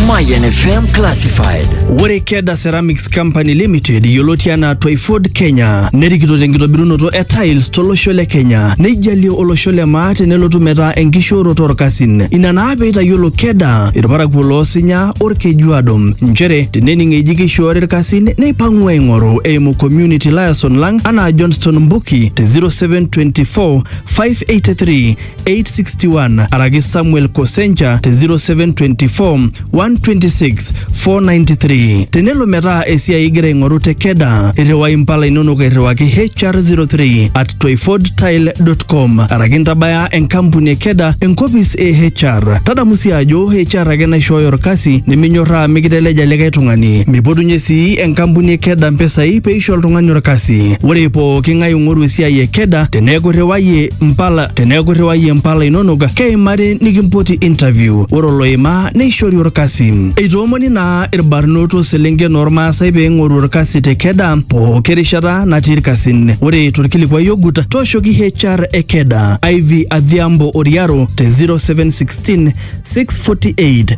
Mayan FM Classified. Ore Keda Ceramics Company Limited yioloti anaa Twyford Kenya nerikito tenkitobirunoto e tiles tolosho le Kenya neijalie olosho le maa tenelotu metaa enkishooroto orkasin. Ina naa peitayiolo Keda irparakuo loosinya orkejuado nchere tenening eji keishoori irkasin neipang'u aing'oru eimu community liaison lang anaa Johnston Mbuki te 0724 583 861 araki Samuel Kosencha te 0724 126 493. Tenelo metaa esiai igira aing'oru te Keda, irriwai impala inonok airriwaki HR03 at toifordtile.com araki intabaya enkampuni e Keda enkopis e HR. Tadamu sii ajo HR ake naishooyo orkasi niminyorraa mikiteleja likae tung'ani. Mipotunye sii enkampuni e Keda mpisai peisho oltung'ani orkasi. Ore pooki ng'ae ong'oru esiai e Keda teneeku irriwayie mpala teneeku irriwayie mpala inonok keimari nikimpoti interview ore oloimaa neishori orkasi eitoomoni naa irbarnot oselenken ormaasai pee eing'oru orkasi te keda pooki rishata natii irkasin ore torkilikuai ogut tooshoki HR e keda Ivy Adhiambo Oriaro te 0716 648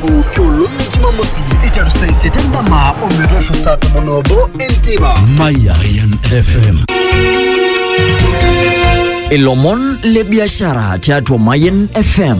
pooki olong e jumamosi eiteru saa isiet endama ometoosho saa tomon obo enteipa Mayan FM. ilomon le biashara tiatua Mayan FM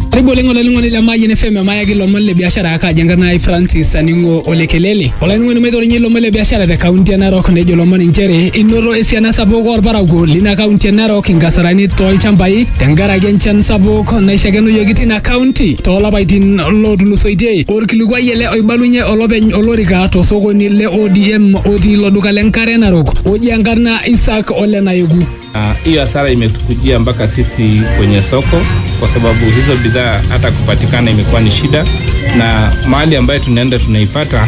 karibu oleng olainining'oni le Mayian FM emayaki ilomon le biashara akaji enkarna ai Francis Aning'o Olekelele olainining'oni maitorinye ilomon le biashara te kaunti e Narok nejo ilomon inchere inoto esiana sapuk orparakuo lina kaunti e Narok inkasarani tolchambai tenkaraki enchan sapuk torrok naishakenoyioki tina kaunti toolapaitin lootulusoitie. Orkilikuai ele oibalunye olopeny olorika tosokoni le ODM otii ilo duka le Nkare Narok oji enkarna Isaac Ole Nayeku. Hiyo uh, hasara imetukujia mpaka sisi kwenye soko, kwa sababu hizo bidhaa hata kupatikana imekuwa ni shida, na mahali ambayo tunaenda tunaipata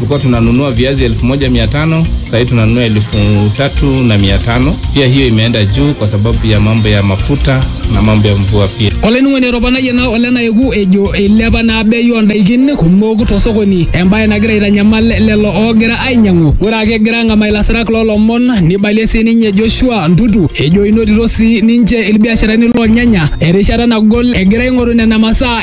tulikuwa tunanunua viazi elfu moja mia tano sahii tunanunua elfu tatu na mia tano pia hiyo imeenda juu kwa sababu ya mambo ya mafuta na mambo ya mvua pia olainining'oni etoponayie naa ole naeku ejo eilepa naa bei oondaikin kumok tosokoni embaye nagira aitanyamal lelo oogira ainyang'u ore ake egira ang'amaa ilasirak loolomon nibalie sii ninye Joshua Ntutu ejo inotito sii ninche ilbiasharani loonyanya erishata nagol egira aing'oru nena masaa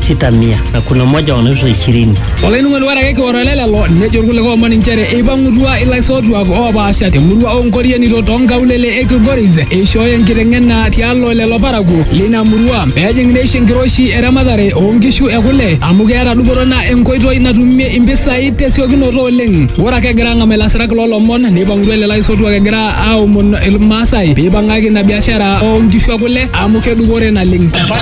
sita mia na kuna moja wanaitwa ishirini. Olainining'oni ore ake kioro ele lelo nejo irkulikae omon inchere eipang'utua ilaisotuak oopaasha temurua oonkorienito toonkaulele e Kilgoris eishooyo enkiteng'ena tialo lelo parakuo leina murua pejing neisho enkiroshi eramatare oonkishu e kule amu keeta dupoto naa enkoitoi natumie impisai tesiokinoto oleng. Ore ake egira ang'amaa ilasirak loolomon neipang'utua lelo aisotuak egira aomon Ilmaasai peipang'aki ina biashara oonkishu e kule amu kedupore naleng.